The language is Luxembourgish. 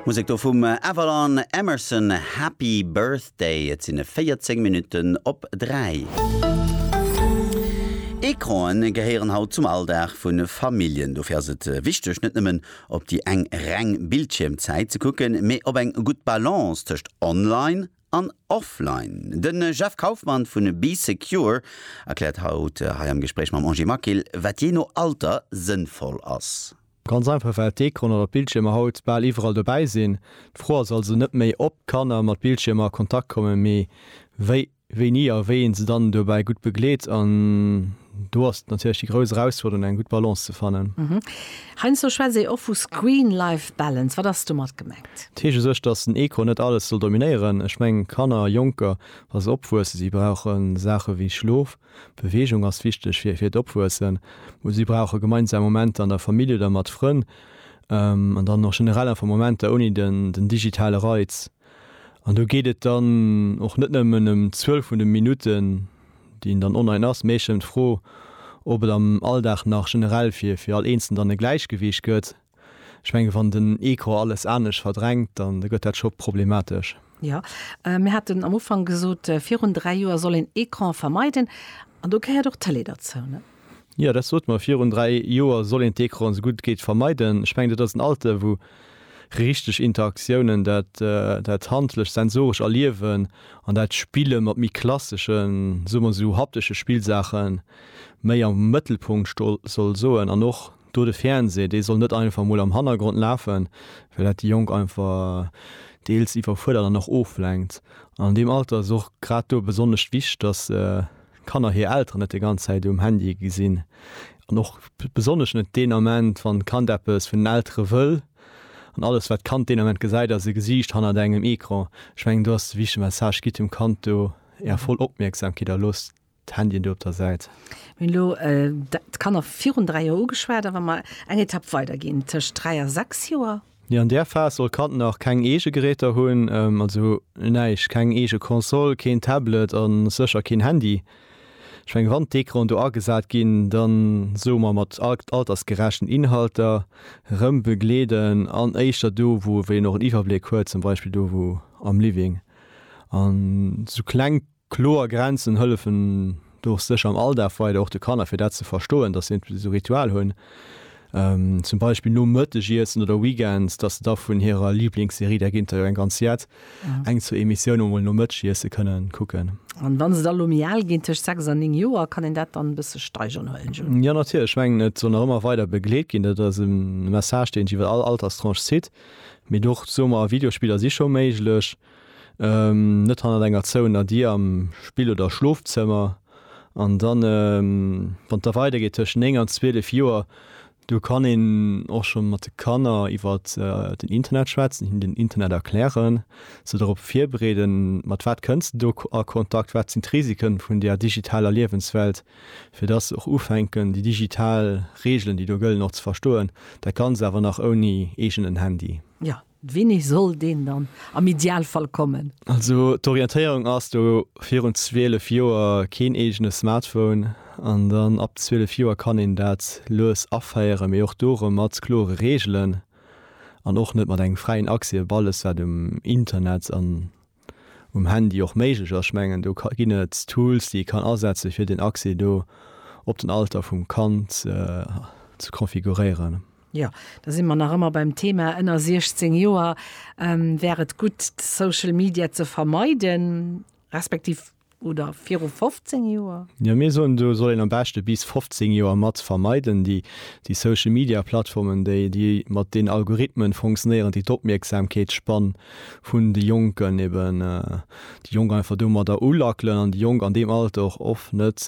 Musek do vum Avalon Emerson, Happy Birthday. Et sinn 14 Minutten op 3. Ecranen gehéieren haut zum Alldag vu Familljen. Dofir ass et wichteg, net nëmmen op déi eng reng Bildschiermzäit ze kucken, mee op eng gutt Balance tëscht online an offline. De Jeff Kaufmann vu Bee Secure erkläert haut hei am Gespréich mam Angie Maquil, wat jee no Alter sënnvoll ass. Ganz einfach well d'Ecranen oder d'Bildschiermer haut bal iwwerall dobäi sinn. D'Fro ass also net méi ob d'Kanner mat Bildschiermer a Kontakt kommen, mee wéi, wéini a wéi een se dann dobäi gutt begleet. An do ass natierlech déi grouss Erausfuerderung eng gutt Balance ze fannen. Heiansdo schwätzt ee och vu Screen-Life Balance. Wat ass domat gemengt? Dat heescht u sech, datt den Ecran net alles soll dominéieren. Ech mengen Kanner, Jonker, wa se opwuessen, si brauche Saache wéi Schlof, Beweegung ass wichteg fir fir d'Opwuessen. Si brauche gemeinsam Momenter an der Famill oder mat Frënn an dann och generell einfach Momenter ouni den den digitale Reiz. An do geet et dann och net nëmmen ëm d'Zuel vun de Minutten, déi een dann online ass, mee eech ëm d'Fro, ob et am Alldag nach generell fir fir all Eenzelen dann e Gläichgewiicht gëtt. Ech mengen, wann den Ecran alles anescht verdrängt, dann gëtt dat scho problematesch. Jo, mir haten am Ufank gesot, virun dräi Joer soll een Ecran vermeiden, an do gehéiert och d'Tëlee derzou, ne? Jo, dat sot mer, virun dräi Joer soll een d'Ecran esou gutt et geet vermeiden. Ech mengen, dat ass en Alter, wou richteg Interaktiounen, dat handlecht, sensorescht Erliewen an dat Spille mat méi klasseschen, soe mer esou haptesche Spillsaache méi am Mëttelpunkt sto soll soen an och Do de Fernseh, dee soll net einfach mol am Hannergrond lafen, well dat déi Jonk einfach deels iwwerfuerdert an och oflenkt. An an deem Alter ass och grad do besonnesch wichteg, dass d'Kanner hir Elteren net déi ganz Zäit um Handy gesinn. An och besonnesch net deen Ament, wann d'Kand eppes vun den Eltere wëll. An alles, wat d'Kand deen Ament gesäit, ass e Gesiicht hannert engem Ecran. Ech mengen, do ass de wichtege Message, Gitt dem Kand do är voll Opmierksamkeet a loosst D'Handyen do op der Säit. Mir hunn elo d'Kanner virun dräi Joer ugeschwat, a wa mer eng Etapp weider ginn, tëscht dräi a sechs Joer? Nee, an där Phas soll d'Kand nach keng eege Geräter hunn, also näischt, keng eege Console, keen Tablet a sécher keen Handy. Ech menge wann d'Ecran do agesat ginn, da soe mer mat altersgerechten Inhalter, rëm begleeden an éischter do, wou wéi een och en Iwwerbléck huet, zum Beispill do wou am Living. An esou kleng Kloer Grenzen hëllefen do och sécher am Alldag weider, och de Kanner, fir dat ze verstoen, datt si entweder esou Ritual hunn, zum Beispill nom Mëttegiessen oder weekends, datt se da vun hirer Liblingsserie, där géint der jo eng ganz jett, eng, zwou Emissioune mol nom Mëttegiesse kënnen kucken. An wann se da elo méi al ginn, tëscht sechs an néng Joer, kann een dat dann e bësse steigeren, Hoang Jun? Jo, natierlech. Ech mengen, et soll nach ëmmer weider begleet ginn. Dat ass e Message, deen sech iwwer all Alterstranche zitt. Mee och, soe mer, Videospiller si scho méiglech. net hannert enger zouener Dier am Spill oder Schlofzëmmer. An dann, wann et da weidergeet tëschent 9 an 12 Joer, do kann een och scho mat de Kanner iwwer den Internet schwätzen, hinnen den Internet erklären, se dorop virbereeden, mat wat kënns de do a Kontakt, wat sinn d'Risiken vun där digitaler Liewenswelt, fir datt se och ufänken, déi digital Reegelen, déi do gëllen, och ze verstoen, dat Ganzt awer nach ouni eegenen Handy. Jo, Winni soll deen dann am Idealfall kommen? Also d'Orientéierung ass do virun 12 Joer keen eegene Smartphone an dann ab 12 Joer kann een dat lues aféieren, mee och do erëm mat klore Reegelen an och net mat engem fräien Accès op alles wat um Internet an um Handy och méiglech ass. Ech mengen do ginn et Tools déi ee kann asetze fir den Accès do op den Alter vum Kand ze configuréieren. Jo, da si mer nach ëmmer beim Thema ënner 16 Joer. Wär et gutt Social Media ze vermeiden, respektiv Oder viru 15 Joer? Jo, mir soen, do soll een am beschte bis 15 Joer mat vermeiden. Déi Social Media Plattformen, déi déi mat den Algorithmen funktionéieren, déi d'Opmierksamkeetsspann vun de Jonken, eben déi Jonk einfach domadder ulackelen an déi Jonk an deem Alter och oft net,